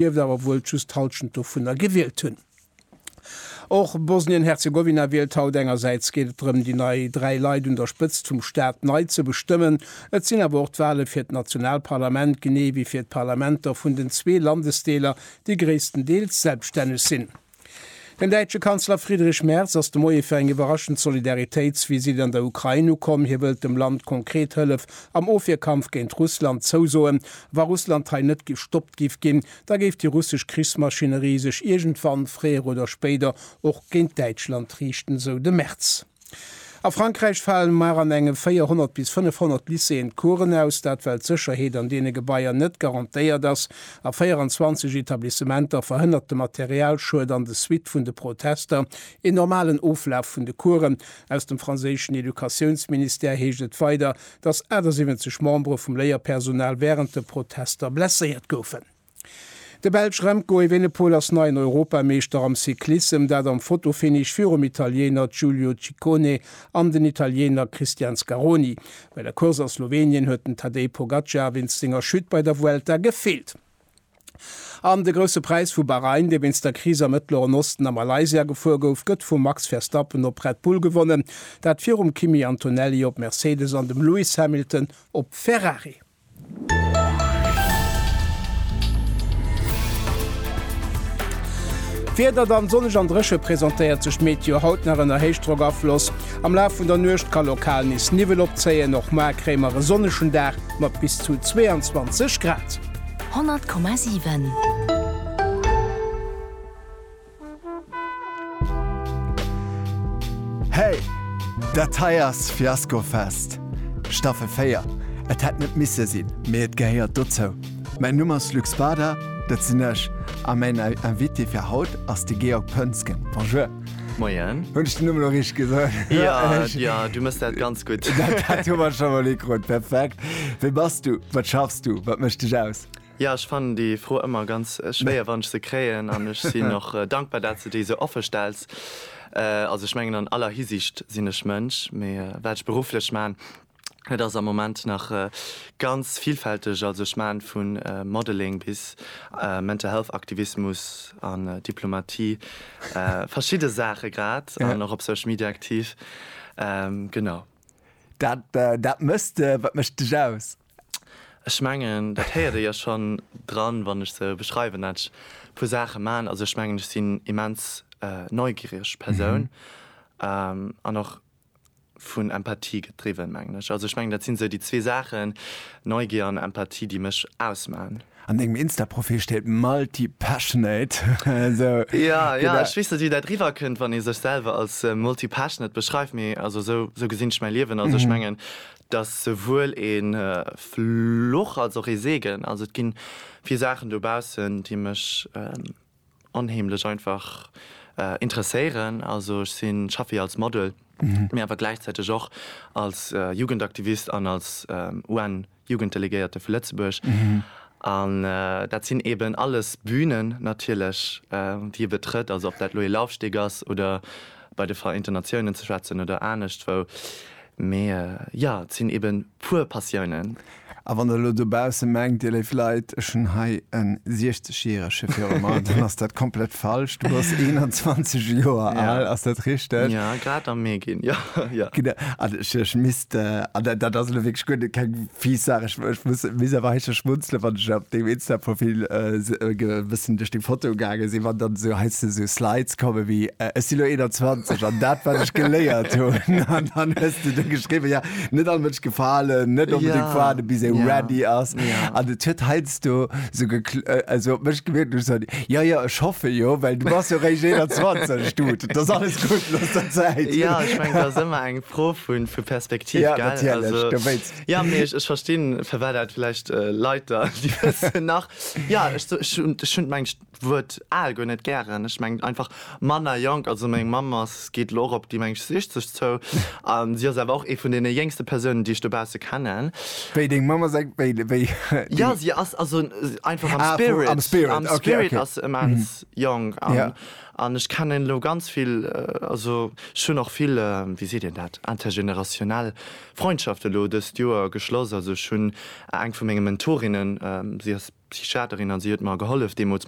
dierft awer wuel just d'Hallschent dovunner gewielt hunn. Och Bosnien-Herzegowina wielt haut. Engersäits geet et drëm, déi nei dräi Leit un der Spëtzt vum Staat nei ze bestëmmen. Et sinn awer och d'Wale fir d'Nationalparlament, genee wéi fir d'Parlamenter vun den zwee Landesdeeler, déi gréisstendeels selbststänneg sinn. Den däitsche Kanzler Friedrich Merz ass de Moie fir eng iwwerraschend Solidaritéitsvisitt an der Ukrain ukomm. Hie wëllt dem Land konkret Hëllef am Ofwierkampf géint Russland zousoen. Wa Russland hei net gestoppt giff ginn, da géif déi russesch Krichsmaschinerie sech iergendwann, fréier oder spéider, och géint Däitschland riichten, sou de Merz. A Frankräich falen mar an enge 400 bis 500 Lycéeën d'Coursen aus, dat well d'Sécherheet an deene Gebaier net garantéiert ass. A 24 Etablissementer verhënnert de Materialschued an de Suitte vun de Protester een normalen Oflaf vun de Coursen. Aus dem franséischen Educatiounsministère heescht et weider, datt 78 Membere vum Léierpersonal wärend de Protester blesséiert goufen. De Belsch Remco Evenepoel ass neien Europameeschter am Cyclissem, dat am Fotofinish virum Italieener Giulio Ciccone an den Italieener Christian Scaroni. Bei der Course a Slowenien huet den Tadej Pogacar wéinst senger Chute bei der Vuelta gefeelt. An de Grousse Präis vu Bahrain, dee wéinst der Kris am Mëttleren Osten a Malaysia gefuer gouf, gëtt vum Max Verstappen op Red Bull gewonnen, dat virum Kimi Antonelli op Mercedes an dem Lewis Hamilton op Ferrari. D'Wieder, dann sonneg an dréche presentéiert sech Meteo haut nach ënner Héichdrockafloss. Am Laf vun der Nuecht ka lokal nees Niwwel opzéien, och moar kréie mer e sonnegen Dag mat bis zu 22 Grad. 100,7. Hey! Dat hei ass Fiasco Fest, Staffel 4. Et hätt net misse sinn, mee et gehéiert dozou. Mäin Numm ass Luc Spada, dat sinn ech, a mäin Invité fir haut ass de Georg Pönsgen. Bonjour! Moien! Hunn ech den Numm elo richteg gesot? Jo, jo, du mëss dat ganz gutt. Dat hu mer scho mol ukrut. Perfekt! Wee bass du? Wat schaffs du? Wat mécht dech aus? Jo, ech fannen déi Fro ëmmer ganz schwéier, wann ech se kréien, an ech sinn och dankbar, dat s de déi esou offe stells. Also ech mengen an aller Hisiicht sinn ech Mënsch, mee wat ech berufflech man, dat ass am Moment nach ganz villfälteg. Also ech man vu Modeling bis Mental Health Aktivismus an Diplomatie, verschidde Saache grad, an och op Social Media aktiv, genau. Dat dat méchs de? Wat mécht dech aus? Ech mengen dat héiert ee jo schonn dran wann ech sou beschreiwen dat ech e puer Saache man. Also ech mengen ech sinn immens neugiereg Persoun an och vun Empathie gedriwwen mengen ech. Also ech mengen dat sinn sou déi zwee Saachen, Neugier an Empathie déi mech ausman. An dengem Insta-Profil steet multi-passionate. Jo jo ech weess net wéi dat riwwer kënnt wann ee sech selwer als multi-passionate beschreift mee also sou gesinn ech mäi Liewen. Also ech mengen Et ass souwuel ee Fluch als och ee Segen. Also et gi vill Saachen dobaussen, déi mech onheemlech einfach interesséieren. Also ech si schaffe jo als Model, mee awer gläichzäiteg och als Jugendaktivist an als UN-Jugenddelegéierte vu Lëtzebuerg. An dat sinn eeben alles Bünen natierlech, déi ee betrëtt, also ob dat elo ee Laufsteg ass oder bei de Vereenten Natiounen ze schwätzen oder aneschtwou, mee jo, et sinn ebe puer Passiounen. A wann der elo dobausse mengt, Dir léif Leit, ech hunn hei e 60 Järege viru mer, dann ass dat komplett falsch. Du bass 21 Joer al, ass dat richteg? Jo, grad am Mee ginn, jo. Genau. An ech An dat ass elo wierklech guer net keng fies Saach. Ech ech muss muss awer héischtegs schmunzele wann ech op dengem Insta-Profil e bëssen duerch deng Fotoe gaange sinn, wann dann esou heiansdo esou Slides komme wéi, Ech si lo 21 an dat wat ech geléiert hunn an dann hues de do geschriwwen, jo net all Mënsch gefalen, net onbedéngt fuerane bis ee ready ass. An et huet heiansdo esou gekl esou op mech gewierkt, wéi wann ech soen, Jo jo ech hoffe jo, well du bass jo réischt 21, Dude, et ass alles gutt, looss der Zäit. Jo, ech mengen dat ass ëmmer eng. d'Fro vu vu Perspektiv ja, gell also, ja, nee, ich, ich verstinn verwert dat vielleicht äh, Leiter die nach ja hun meng Wuert al go net gären ich meng einfach Manner jonk also meng Mammers geht lo op die meng 60 zou an sie ass awer och e vun den jéngste Persounen die ich dobausse kennen. Wéi deng Mammer seng wéi wéi Ja sie ass also einfach am ah, Spirit am Spirit, am Spirit okay, okay. ass immens mm. jong an, ja. An ech kennen elo ganz vill, also ech hunn och vill, wéi seet een dat, intergénérationnel Freundschaften elo dëst Joer geschloss. Also ech hunn eng vu menge Mentorinnen, si ass Psychiaterin a si huet mer gehollef deemools mat.